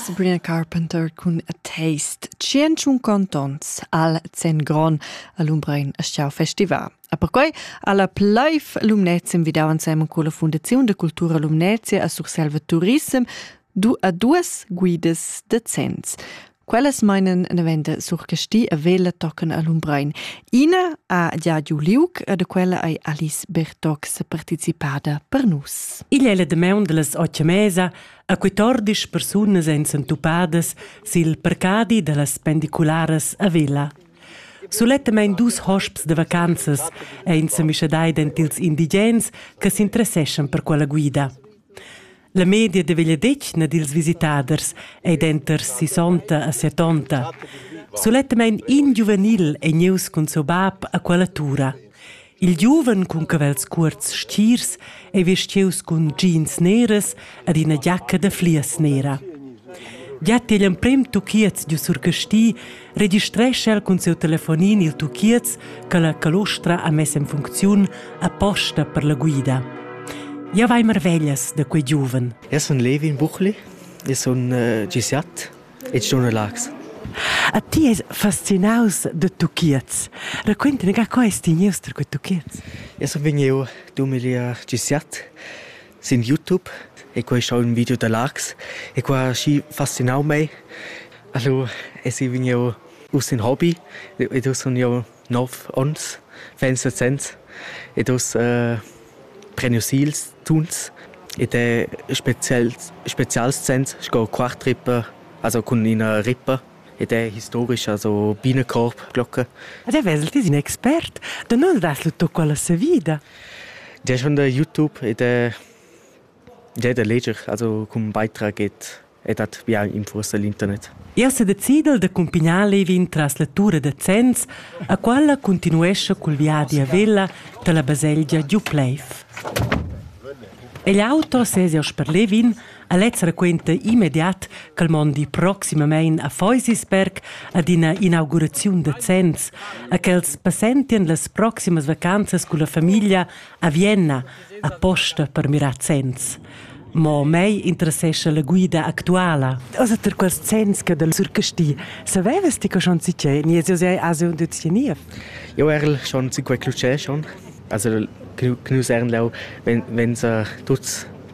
Sabrina Carpenter cun A Taste. Tschientschun contons al Zen Gron a Lumbrein a Schau Festival. A perquai alla Pleif Lumnezia invidau ensemen con la Fondazione de Cultura Lumnezia a Surselva Turism du a duas guidas de zenns. Quellas meinen daventa surcasti a vela toccen a Lumbrein. Ina ha già giu liuc e da quella ei Alice Bertox participada per nus. Igl è la demaun delles otg mesa a 14 persunas ein sentupadas sil parcadi dallas pendicularas a Vela. Sulettamein dus hosps de vacanzas ein semischadai dentils indigens che s'interesseschan per quella guida. La media da vegliadetgna dils visitaders ei denter sisonta e setonta. Sulettamein in giuvenil ei nieus cun seu bab a quella tura. Il giuven cun cavels cuorts stirs ei vestieus cun jeans neras ed ina giacca da flias nera. Già tegl emprem tuchiez giu sur Casti registrescha el cun siu telefonin il tuchiez che la calostra ha mess en funcziun aposta per la guida. Ja vai marveglias da quei giuven. Eu sun Levin Buchli, eu sun uh, gisiat e giorno lax. A ti es fascinaus de tuchiez. Raccuntami, ca co es ti gnius per quei tuchiez? Eu sun vegniu 2017 sin YouTube e quei schau ün video da Lachs e qua ha aschi fascinau mei. Allura esi vegniu uss in Hobby ed uss sun jeu nov ons, ventg sezs ed uss äh, prenu si ils tuns ed è spezial, spezials sens sco Quartrippe, also cun ina rippa. ed è historica so bina corp glocca. Ed è vesel ti in expert? Da nus das lu tu quella savida. Di è schon da YouTube ed è Già da leger, also cum beitrag et et hat ja in forse l'internet. Io se decidel de cumpignar Levin tras la tura de Zenz, a qualla continuesce col viadi a Vella dalla baselgia Dupleif. E l'auto sesio per Levin A lez raquenta immediat ch'el mondi proximamein a Feusisberg ad ina inauguraziun da zenns e ch'els passentien las proximas vacanzas culla famiglia a Vienna aposta per mirar zenns. Mo mei interessescha la guida actuala. Osa ter quels zenns che del surcasti. Savevas ti che schon si che ni es sei ase un duzieniev? Jo erl schon si quei clucè schon. Also knus ernlau wenn wenn sa tuts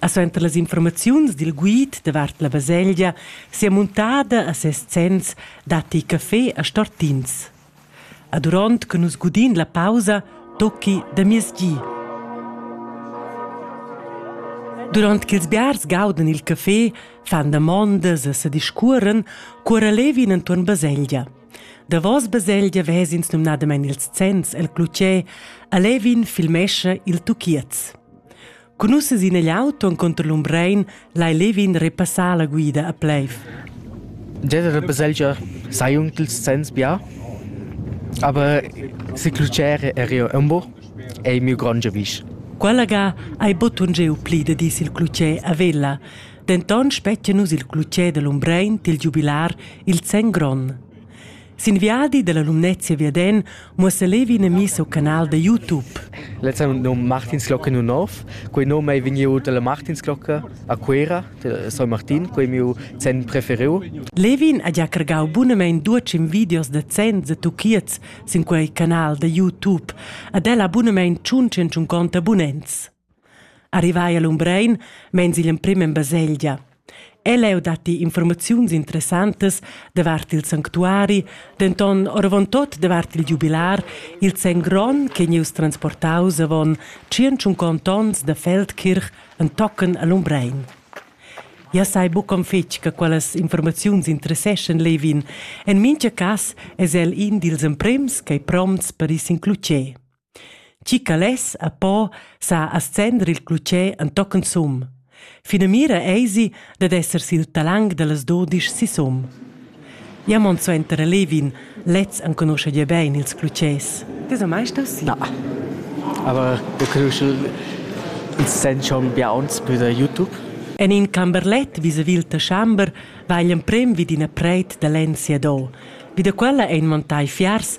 ha suenter las informaziuns dil guid davart la baselgia sia muntada a ses zenns datti café a Stortins. A duront che nus gudin la pausa, tocchi da mies gi. Durant ch'ils biars gaudan il café, fan damondas e sediscuoren, cuora levin entuorn baselgia. Davos baselgia vesins numnadamain ils zenns el clutgè, a levin filmescha il tuchiez. Cun nus sin igl auto encunter l'Umbrein lai Levin repassar la guida a Pleiv. Jeder baselgia sa jung dils zenns bia, aber se clucere e rio umbo ei miu grand giavisch. Quella ga ei botun giu pli da dis il clucè a Vella. Denton spettia nus il clucè dell'Umbrein til giubilar il Zen Gron. Sin viadi dalla Lumnezia viaden muossa Levi in mi seu canal da YouTube. Lezza num Martinsglocke nu nov. Quei num ei vegniu dalla Martinsglocke a Cuera, de San Martin, quei miu zen preferiu. Levin ha già cargau bunamein duecim videos da zen za tuchiez sin quei canal da YouTube. Ad ella bunamein tschun tschunconta abunents. Arrivai a Lumbrein meins igl emprem en baselgia. Ell'eu datti informaziuns interessantas davart il sanctuari, denton oravontut davart il giubilar, il sen gron che gnieus transportaus avon tschient onns da Feldkirch entochen a Lumbrein. Ja sai buc'm fetg che quellas informaziuns interesseschan Levin. En mincha cas es el in dils emprems ch'ei prompts per ir sin clucher. Tgi ca less e po sa ascender il clutger entochen sum. Finamira eisi dad esser sil talang dallas dudisch sisum. Ja mon suenter a Levin, lez enconuscha gia bein ils clutgers. Ti sa mai stas? Na. Aber wir können schon uns sehen schon bei uns bei der YouTube. En in camberlet vis-a-vis il Taschamber va igl emprem vid ina preit da lenn siado. Vi da quella ein montai fiars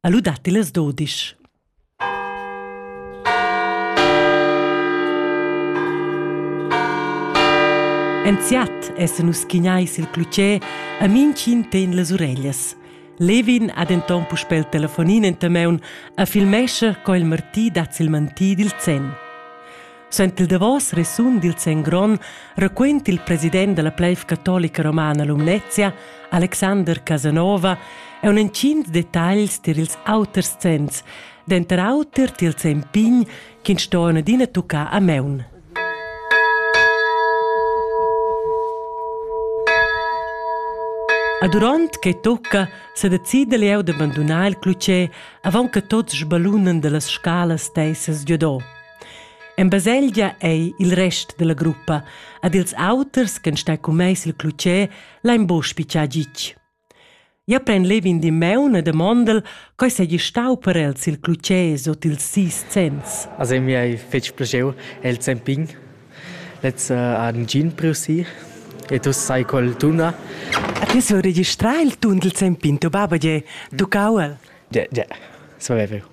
ha lu datti las dudisch. Enziat essan nus schignai sil clutger a minchin ten las ureglias. Levin ha denton puspel il telefonin enta meun a filmescha co il martì dat sil mantì dil zen. Sent il davos resun dil Sen Gron raquent il president dalla pleiv catolica romana Lumnezia, Alexander Casanova, e un entgins detagls tier ils auters zenns, denter auter tier il Sen Pign ch'in stoen adina tucca a meun. A durant che tocca se decida leu de bandunar il clucè avant che tots sbalunen dallas scalas teissas giodò. En baselgia ei il rest dalla gruppa ad ils auters ch'en stai cun mei sil clutger lein buc spitschar gitg. Ja pren levin di meun e demondel coi seigi stau per el sil clutger sot ils sis cents. Also mi hai fetg plaschiu el zempin. Letz uh, han gin priu si e tu sai col tuna. A ti sul registrar il tun del zempin, tu baba ge, tu cauel. Ja, ja, so è vero.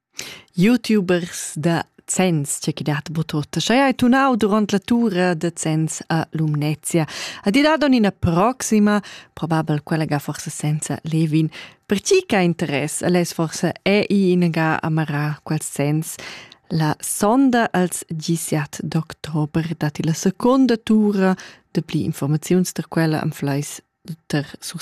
Youtubers da Zens, tge chi dat bod tuot. Scha eir tunau durant la tura da Zens a Lumnezia. Ad i dat ina proxima, probabel quella ga forse senza Levin. Per chi ch'ha interess, el es forse ei inagà amarà quels Zens. La sonda als 17 d'october datti la seconda tura. Da pli informaziuns da quella am flais ter sur